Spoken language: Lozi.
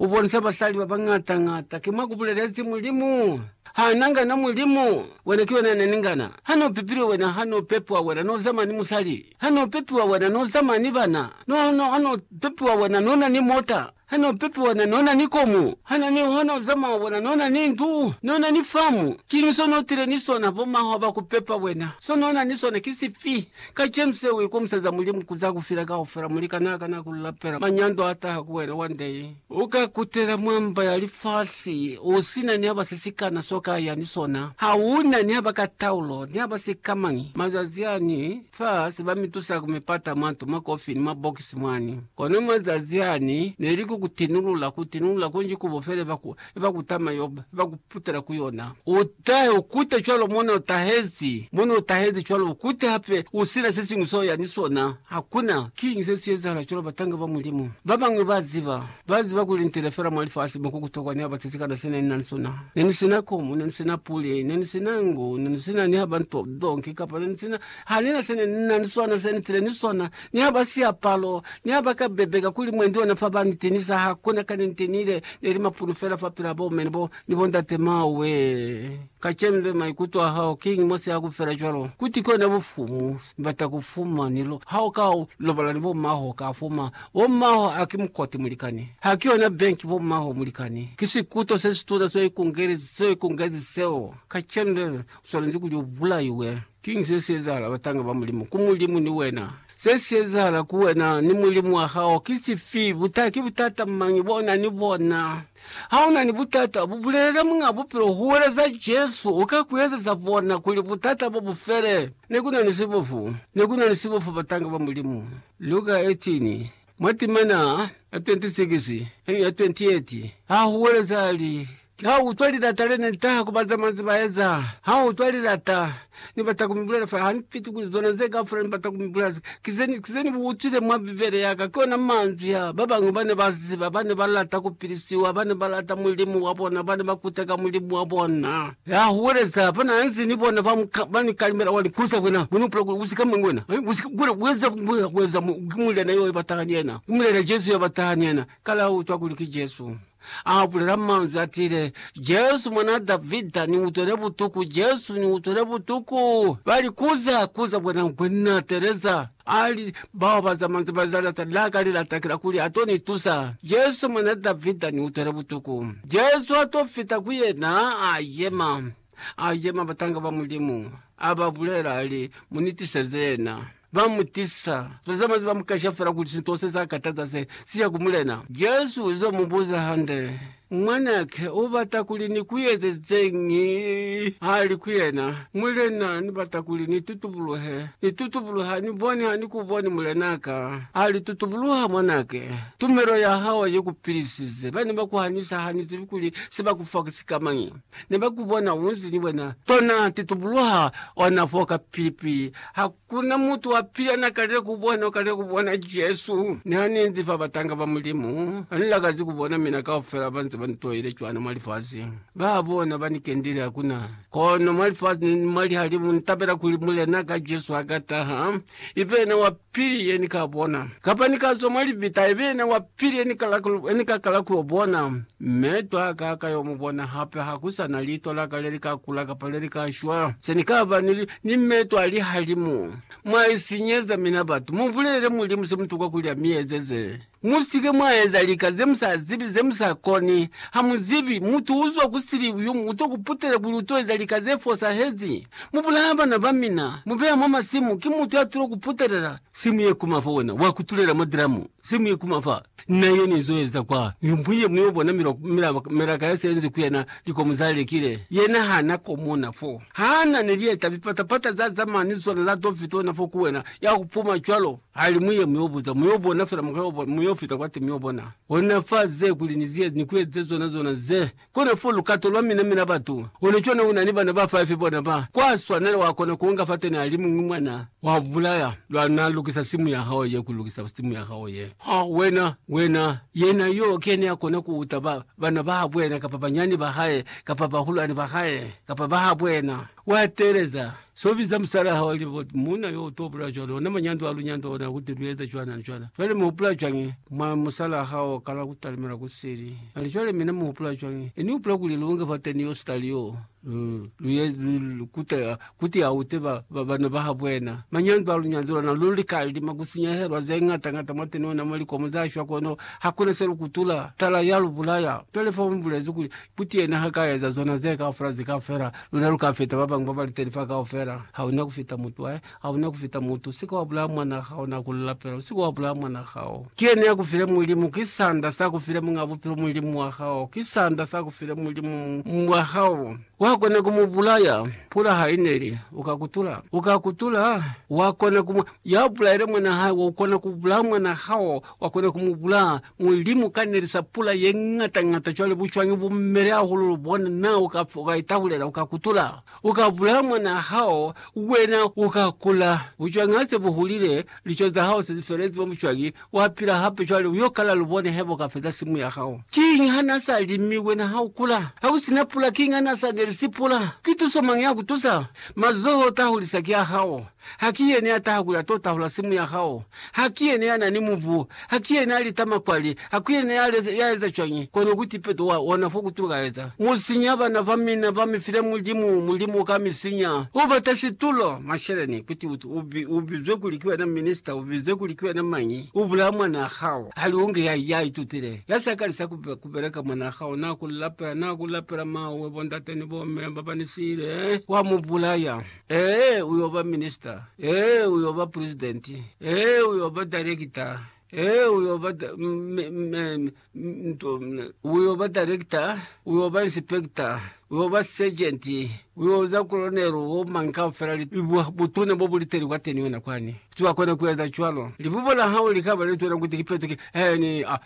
U bonisa basali ba bañata-ñata. Ki mwa ku bulelezi Mulimu. Ha na nga na Mulimu, wena ki wena ne ni nga na. Ha no pepilwe wena, ha no pepiwa wena, no zama ni musali. Ha no pepiwa wena, no zama ni bana. No, no, ha no pepiwa wena, no na ni mota. Ha no pepiwa wena, no na ni komu. Ha na ni, ha no zama wena, no na ni ndu, no na ni famu. Kiñi so no tile ni sona? Bo mahwa ba ku pepa wena. So no na ni sona ki sifi? Kacenu se u ikomiseza Mulimu ku za ku fila kaufela, mu lika naa kana ku lapela manyando a taha ku wena one day. U ka kutela mwa mba ya lifasi u si na ni haba se si kana so ka ya ni sona. Ha u na ni haba ka taulo, ni haba si ka mañi. Mazazi ani, fa se ba mi tusa ku mi pata mwa nto, mwa kofini, mwa bokisi mwani. Kono mazazi ani, ne li ku ku tinulula, ku tinulula kunji ku bo fele ba ku Iba kutama yoba, iba kuputela ku yona. Utahe, ukute cwalo mone utahezi, mone utahezi cwalo, ukute hape usina sesiñwi seo yani sona. Hakuna. Kiñi se si ezahala cwalo, batanga ba Mulimu babañwi ba ziba, ba ziba kuli nitile fela mwa lifasi mo ku kutokwa ni haba sesikana sene ni na ni sona. Ne ni sina komu, ne ni sina puli, ne ni sina ngu, ne ni sina ni haba nto zonke, kapa ne ni sina. Ha ni na sene ni na ni sona se ni tile ni sona, ni ha ba siapalo, ni ha ba ka bebeka kuli mwendi ona fa ba ni tinisa, ha ku na ka ni ntinile, ne li mapunu fela fa pila bo mene bo ni bo ndate mawe. Kacenu le maikuto a hao kiñi mo si ha ku fela cwalo? Kuti ki ona bufumu ni bata ku fuma ni lo, ha u ka lobola ni bo maho ka fuma. Bo maho ha ki mukoti mulikani, ha ki yona benki bo maho mulikani. Ki sikuto se situna seo i kungelezi seo. Kacenu le u swanezi kuli u bulaiwe. Kiñi se si ezahala batanga ba Mulimu ku Mulimu ni wena? Se si ezahala ku wena ni Mulimu wa hao ki sifi? Buta, Ki butata mañi bo na ni bona? Ha u na ni butata, bu bulelele Muñ'a Bupilo, huweleza Jesu, u ka ku ezeza bona kuli butata bo bu fele. Ne ku na ni sibofu. Ne ku na ni sibofu batanga ba Mulimu. Lu ka etiñi? Mwa timana ya 26 ni ya 28, ha huweleza li, Ki ha u utwa lilata le ne li taha ku ba za manzwi ba eza. Ha u utwa lilata, ni bata ku mi bulela fa hampiti kuli zona ze kaufela ni bata ku mi bulela ze, ki ze, ki ze ni bu utwile mwa Bibele ya ka. Ki ona manzwi a ba bañwi ba ne ba ziba, ba ne ba lata ku pilisiwa, ba ne ba lata Mulimu wa bona, ba ne ba kuteka Mulimu wa bona. Ya huweleza ba na nze ni bona ba ba ni kalimela wa linku za bona, bona upula kuli u si ka mwa wena, mi u si ka kula ku eza ku mbulela ku eza mo, ki muliana yo ya ba taha ni yena, ku bulela Jesu ya ba taha ni yena. Kala u utwa kuli ki Jesu. A bulela manzwi a tiile, Jesu, Mwanaa Davida, ni utwele butuku! Jesu, ni utwele butuku! Ba likuza, kuza bona, Ngwenya, teleza! A li, Bao ba za manzwi ba Zanata la ka li lata ki la kuli a to ni tusa. Jesu, Mwan'a Davida, ni utwele butuku. Jesu a to fita ku yena, a yema. A yema, batanga ba Mulimu a ba bulela, a li, Mu ni tiseze yena. Ba mu tisa. Ba za manzwi ba mu kasha fela kuli sinto se sa kataza se, si ya ku Mulena. Jesu u zo mu buza hande, Mwanake u bata kuli ni ku ezezeñi? Ha li ku yena, Mulena, ni bata kuli ni tutubuluhe. Ni tutubuluhe, ha ni boni, ha ni ku boni, mulenaka. A li, Tutubuluha, mwanake. Tumelo ya hao i ku pilisize. Ba ne ba ku hanisa, ha ni zibi kuli se ba ku fa ki sikamañi. Ne ba ku bona u nzi ni wena. Tona, titubuluha ona foo ka pipi. Ha Kuna mutu wa pila na kalile ku bona, u kalile ku bona Jesu ni ha ni nzi fa batanga ba Mulimu. Ha ni lakazi ku bona mina kaufela ba nze ba ni toile cwana mwa lifasi. Ba bona ba ni kendile hakuna kono mwa lifasi ni mwa lihalimu. Ni tabela kuli Mulena ka Jesu ha ka taha, i be yena wa pili ye ni ka bona. Kapa ni ka zwa mwa libita, i be yena wa pili ye ni ka kala ku yo bona. Meto a ka a ka yo mu bona hape. Ha ku sa na liito la ka le li ka kula kapa le li ka shwa. Se ni ka ba ni Ni meto a lihalimu. Mwa isinyeza mina batu. Mu bulelele Mulimu se mutuka kuli a mi ezeze. Mu si ke mwa eza lika ze mu sa zibi, ze mu sa koni. Ha mu zibi, mutu u zwa ku sili yo u to ku putela kuli u to eza lika ze fosahezi. Mu bulaya bana ba mina, mu beya mwa masimu. Ki mutu ya tulo ku putelela simu ye kuma fa wena, wa kutulela mwa dramu, simu ye kuma fa. Na yena izo eza kwa yumbu ye mwi obona milaka ya se enzi ku yena, likomu za lekile. Yena ha na komona fo. Ha na ni lieta lipata pata za zamaya ni zona za to fita ona fo ku wena, ya ku puma cwalo. Ha li mwi ye mwi obuza, mwi obona fela mukwa yo fita kwati mwi obona. Ona fa ze kuli ni ku eze zona zona ze Kona fo lukato lwa mina mina batu ona cona una ni bana ba five bona ba kwa swanela wa kona ku nga fateni ali muñwi mwana wa bulaya lwa na lukisa simu ya hao ye ku lukisa simu ya hao ye ha wena wena yena yo kene a kona ku uta ba bana ba habwena kapa banyani ba hae kapa bahulwani ba hae kapa ba habwena Wa teeleza, So biza musalaa hao ali bo muuna yo uto bula cwalo, ona manyando a lu nyando ona kuti lu eza cwana ni cwana. Cwale mu hupula cwañi? Mwa musalaa hao o kala ku talimela ku sili. Ali, Cwale mina mu hupula cwañi? Ini hupula kuli lu nge fateni yo sitali yoo, lu, lu, lu kute, kuti a ute ba, ba, bana ba habo yena. Manyando a lu nyando lona lu lika lima ku sinyehelwa ze ñata ñata mwateni ona mwa likomo za shwa kono hakuna se lu kutula. Tala, ya lu bulaya. Cwale fa mu bulezi kuli, Kuti yena ha ka eza zona ze kaufela ze ka fela, luna lu ka feta ba bañwi ba ba liteni fa kaufela. Hauna ku feta mutu hae, hauna ku feta mutu. U si ke wa bulaya mwan'a hao, na ku lu lapela. U si ke wa bulaya mwan'a hao. Ki yena ya ku file Mulimu, ki sanda sa ku file Muñ'a Bupilo, Mulimu wa hao. Ki sanda sa ku file Mulimu, Muñ'a wa hao. Wa kona ku mu bulaya. Pula ha i neli, u ka kutula. U ka kutula. Wa kona ku mu. Ya bulaile mwan'a hae, wa kona ku bulaya mwan'a hao. Wakona ku mu bulaa. Mulimu ka nelisa pula ye ñata ñata cwale bucwañi bu mele hahulu, lu bona na? U ka fa, u ka itahulela, u ka kutula, u ka bulaa mwanaa hao, wena u ka kula. Bucwañi ha se bu hulile, lico za hao se li felezi mwa bucwañi, wa pila hape cwale, u yo kala, lu bone heba u ka feza simu ya hao. Kiñi ha na sa limi, wena ha u kula? Ha ku si na pula, kiñi ha na sa nelisi pula? Ki tuso mañi ya ku tusa? Mazoho o tahulisa ki a hao. Haki yene ya taha ku ya to tahula simu ya hao? Haki yene ya na ni mubu? Haki yene ya lita makwali? Haku yene ya eza cwañi kono ku tipeto wa ona fo ku tukaeza? Mu sinya bana ba mina, ba mi file Mulimu, Mulimu ka mi sinya. U bata situlo, masheleni, kuti u bizwe kuli ki wena minista, u bizwe kuli ki wena mañi, u bulaya mwanaa hao. Hali u nge ya, ya itutile, ya sa kalisa ku beleka, mwanaa hao na ku lapela, na ku lapela, Mawe, bo ndate ni bo me ba ba ni siile, wa mu bulaya. Ee, u yo ba minista. Ee, u yo ba pulizidenti. Ee, u yo ba direkita. Ee, u yo ba da, m, m, m, m, u yo ba direkita, u yo ba insipekita, u yo ba sejenti, u yo za kolonelu, bo mañi kaufela li, bu, butuna bo bu liteli kwa teni wena kwani. Ki wa kona ku eza cwalo. Libubo la hao li ka ba lituna kuti ki petuke. He, ni, a,